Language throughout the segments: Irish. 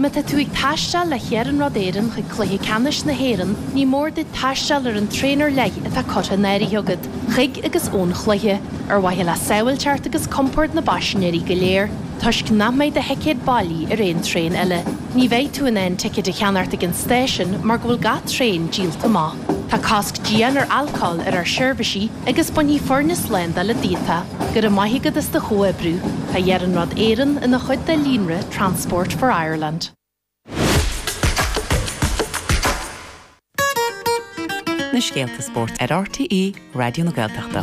Má tá tú ag taisteal le hIarnród Éireann chuig Cluiche Ceannais na hÉireann, ní mór duit taisteal ar an traein ar leith atá curtha in áirithe agat chuig agus ón chluiche, ar mhaithe le sábháilteacht agus compord na bpaisinéirí go léir, toisc nach mbeidh do thicéad bailí ar aon traein eile. Ní bheidh tú in ann ticéid a cheannacht ag an stáisiún mar go bhfuil gach traein díolta amach. Tá cosc dian ar alcól ar ár seirbhísí agus bainfidh foirne slándála é díot. Go raibh maith agat as do chomhoibriú. Tá Iarnród Éireann ina chuid de líonra Transport for Ireland. na scéalta spóirt ar RTÉ Raidió na Gaeltachta.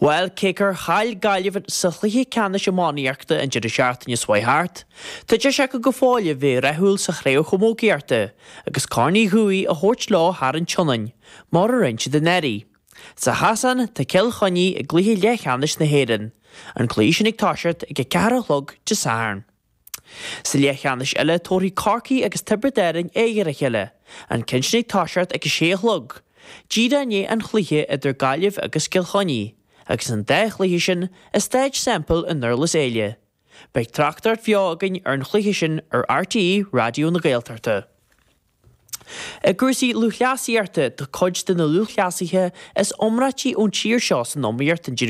Bhuel, cé gur chaill Gaillimh sa chluiche ceannais iománaíochta an deireadh seachtaine seo thart, tá deis acu go fóill a bheith rathúil sa chraobh chamógaíochta agus Corn Uí Dhufaigh a thabhairt leo thar an tSionainn, mar a rinne siad anuraidh. Sa chasán, tá Cill Chainnigh i gcluiche leathcheannais na hÉireann, an cluiche sin ag toiseacht ag a ceathair a chlog Dé Sathairn. Sa leathcheannais eile, tabharfaidh Corcaigh agus Tiobraid Árainn aghaidh ar a chéile, an cionn sin ag toiseacht ag a sé a chlog, díreach i ndiaidh an chluiche idir Gaillimh agus Cill Chainnigh, agus an dá chluiche sin i Stáid Semple i nDurlas Éile. Beidh tráchtaireacht bheo againn ar an chluiche sin ar RTÉ Raidió na Gaeltachta. I gcúrsaí lúthchleasaíochta, tá cuid de na lúthchleasaithe is iomráití ón tír seo san iomaíocht an